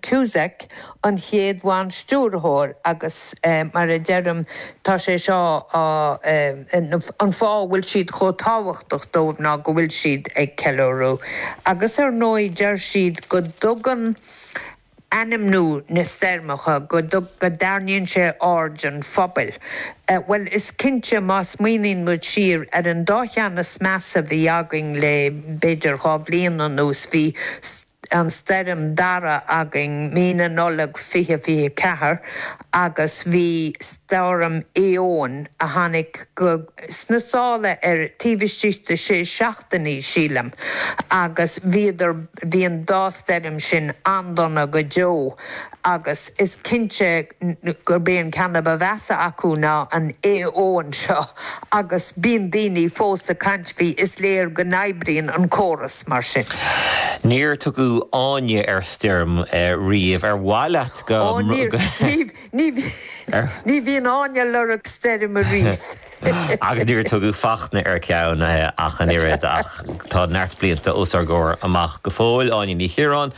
Cusack, an chéad bhanstiúrthóir agus mar a deirim tá sé seo an fáth a bhfuil siad chomh tábhachtach dóibh ná go bhfuil siad ag ceiliúradh agus ar ndóigh deir siad go dtugann ainmniú na stoirmeacha, go dtarraingíonn sé aird an phobail. Bhuel is cinnte má smaoiníonn muid siar ar an dá cheann is measa a bhí againn le b'fhéidir dhá bhliain anuas bhí an stoirm Darragh againn mí na Nollag 2024 agus bhí Stoirm Eowyn a tháinig go, sna sála ar, taobh istigh de sé seachtainí sílim agus bhíodar, bhí an dá stoirm sin an-dona go deo. agus is cinnte gurb é an ceann a ba mheasa acu ná an Eowyn seo, agus bíonn daoine fós ag caint faoi, is léir go n-oibríonn an córas mar sin. Níor tugadh Áine ar stoirm riamh, ar mhaith leat go?. Ó níor, ní, ní bhíonn Áine ag lorg stoirm ariamh. Agus níor tugadh Fachtna ar cheann ach an oiread, ach tá neart blianta os ár gcomhair amach go fóill. Áine Ní Chiaráin.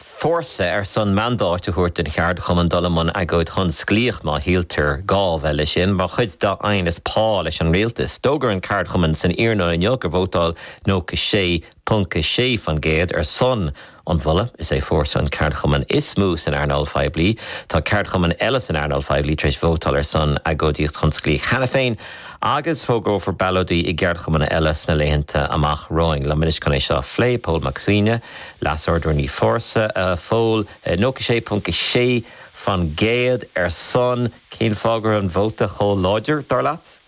Fórsa ar son mandáit a thabhairt don cheardchumann dul i mbun agóid thionsclaíoch má shíltear gá a bheith leis sin mar chuid dá aighneas pá leis an rialtas. D'fhógair an ceardchumann san iarnóin inniu gur vótáil 96.6% ar son an mholta. Is é Fórsa an ceardchumann is mó san earnáil phoiblí. Tá ceardchumainn eile san earnáil phoiblí tar éis vótáil ar son agóidíocht thionsclaíoch cheana féin agus fógrófar ballóidí i gceardchumanna eile sna laethanta amach romhainn. Liom anois chun é seo a phlé, Pól Mac Suibhne, Leas-Ard-Rúnaí Fórsa a Phóil, 96.6%, ar son. Cén fáth go raibh an vóta chomh láidir, dar leat?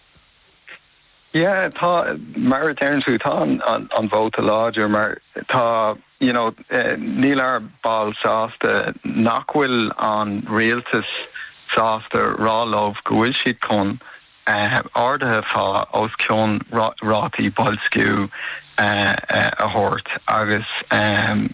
Yeah, tá, mar a deireann tusa, tá an vóta láidir mar tá, you know, níl ár mbaill sásta nach bhfuil an rialtas sásta rá leo go bhfuil siad chun ardaithe pá os cionn rátaí boilsciú a thabhairt agus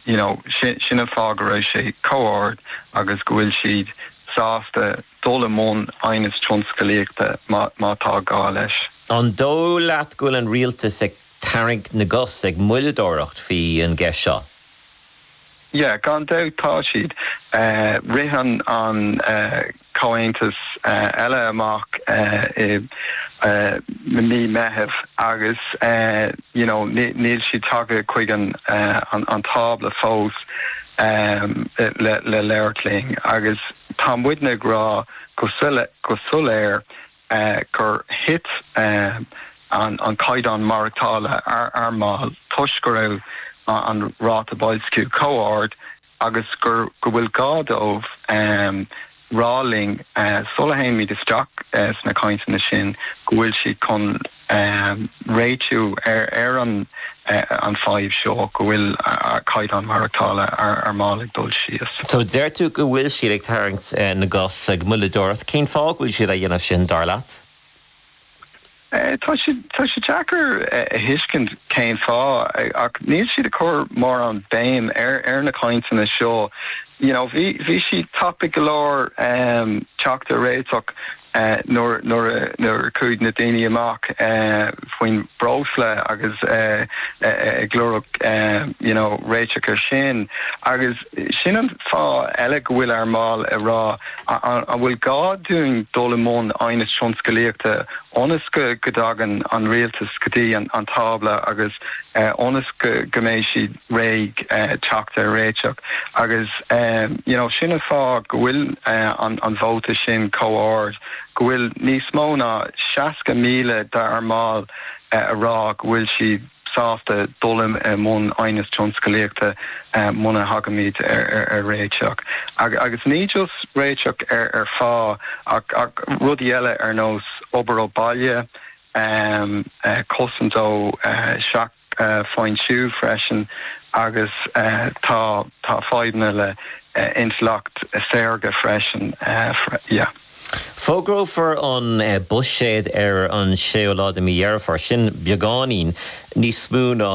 you know sin an fáth go raibh sé chomh ard agus go bhfuil siad sásta dul i mbun aighneas tionscalaíochta má tá gá leis. An dóigh leat go bhfuil an rialtas ag tarraingt na gcos ag moilleadóireacht faoi an gceist seo? yeah, gan dabht tá siad. Rith an comhaontas eile amach i mí Meithimh agus you know níl siad tagtha chuig an tábla fós le labhairt linn agus tá muidne ag rá go soiléir gur thit an caighdeán maireachtála ár mball toisc go raibh an ráta boilsciú chomh ard agus go bhfuil gá dóibh rá linn sula dtéimid isteach sna cainteanna sin go bhfuil siad chun um réitiú ar an an fadhb seo go bhfuil caighdeán maireachtála ár mball ag dul síos. So deir tú go bhfuil siad ag tarraingt na gcos ag moilleadóireacht, cén fáth go bhfuil siad á dhéanamh sin, dar leat? Tá sé tá sé deacair a thuiscint cén fáth ach níl siad ag cur mórán béim ar ar na cainteanna seo, you know bhí bhí siad tapaidh go leor um teacht ar réiteach nuair a chuaigh na daoine amach faoin bhreosla agus ag lorg you know réiteach ar sin agus sin an fáth eile go bhfuil ár mbaill ag rá an bhfuil gá dúinn dul i mbun aighneas tionscalaíochta ionas go dtagann an rialtas go dtí an tábla agus ionas go mbeidh siad réidh teacht ar réiteach agus you know sin an fáth go bhfuil an vóta sin chomh ard, go bhfuil níos mó ná 60,000 d'ár mbaill a rá go bhfuil siad sásta dul i mbun aighneas tionscalaíochta muna thagaimid ar réiteach agus ní just réiteach ar phá ach rudaí eile ar nós obair ó baile, cosaint ó. foinsiú freisin agus tá tá fadhbanna le intleacht saorga freisin yeah. Fógrófar an Buiséad ar an séú lá de mí Dheireadh Fómhair, sin beagáinín níos mó ná